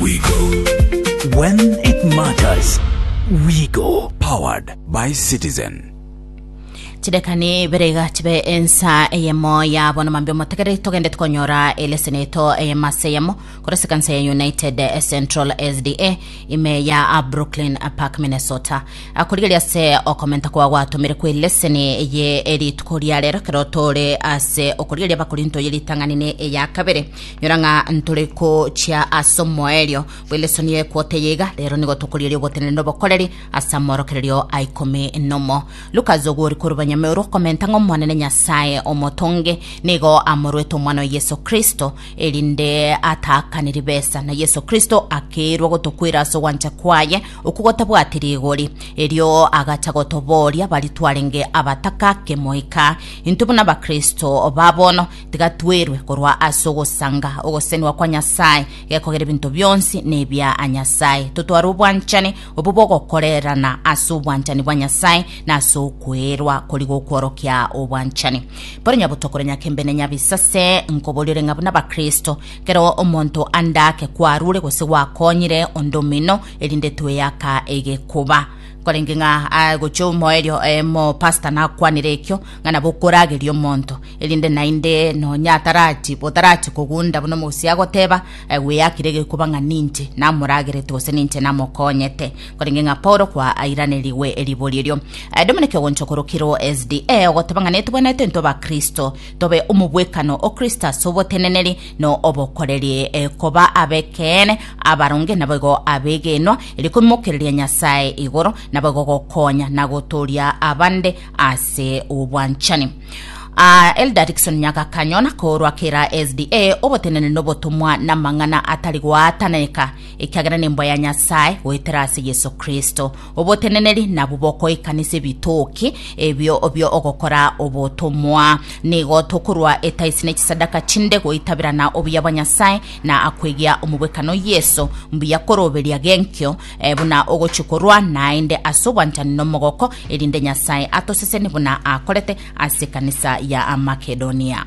We go. When it matters, we go. Powered by Citizen. chidekani biriga chibe ensa eyemo yabo na mambia omotegere togende tukonyora eleseni eto eyemo ase eyemo korase kanisa ya united eh, central sda ime ya ah, brooklyn ah, park minnesota Ah, korigeria ase okomenta kwa gwatomire kwa eleseni eye erituko ria rero kero tore ase okorigeria bakorinto ye ritang'ani ne eya kabere Nyora ng'a ntore gochia ase omoerio bw'engeresano ya ekwota eye iga, rero nigo tokorieria ogotenena n'obokoreri ase amorokererio a ikomi nomo. Lukas ogwori korwa Banyameru okomenta ng'a Omonene Nyasae Omotonge nigo amoruete Omwana oye Yeso Kristo, erinde ataakane ribesa, na Yeso Kristo akeirwa gotokwera ase ogwancha kwaye okwo gotabwati rigori. Erio agacha gotobooria baria twarenge abataka ake moika intwe buna Abakristo ba bono, Tiga twerwe korwa ase ogosanga ogosesenigwa kwa Nyasae, gekogera ebinto bionsi nebia Nyasae. Totware obwanchani obwo bogokorerana ase obwanchani bwa Nyasae na ase okweerwa kori gokworokia obwanchani. Bono nyabotokoro nyakembe ne nyabisase, nkoboriore ng'a buna Abakristo, kero omonto ande ake kwarure gose gwakonyire onde omino, erinde tweyaka egekoba. Korenge ng'a gochia omoerio oyomo pastor nakwanire ekio, ng'a nabo okorageria omonto, erinde naende nonya atarachi botarachi kogunda buna omogusi agoteba, eh, gweyakire egekuba ng'a ninche namoragerete gose ninche namokonyete, korenge ng'a Paulo kwaairanirigwe ribori erio. Eh, Dominic ogoncha okorokirwo SDA ogoteba ng'a netwenerete intwe Abakristo tobe omobwekano o Kristo ase oboteneneri na obokoreri, eh, koba ab'ekeene, abaronge, naboigo abegenwa, erio koimokereria Nyasae igoro, naboigo gokonya na gotooria abande ase obwanchani. Ah, Elder Dickson Nyagakanyo na korwa kera SDA obotenene nobotomwa na mang'ana atari goataneka ekiagera nemboa ya Nyasaye goetera ase Yesu Kristo. Oboteneneri nabu bokoikanisa ebitoki ebio bio ogokora obotomwa. Nigo tokorwa etaisi ne chisadaka chinde goitabera na obuya bwa Nyasaye na akoigia omobwekano Yesu mbuya koroberia genkio Eh, buna ogochia korwa naende ase obwanchani nomogoko, erinde Nyasae atoseseni buna akorete ase ekanisa ya Makedonia.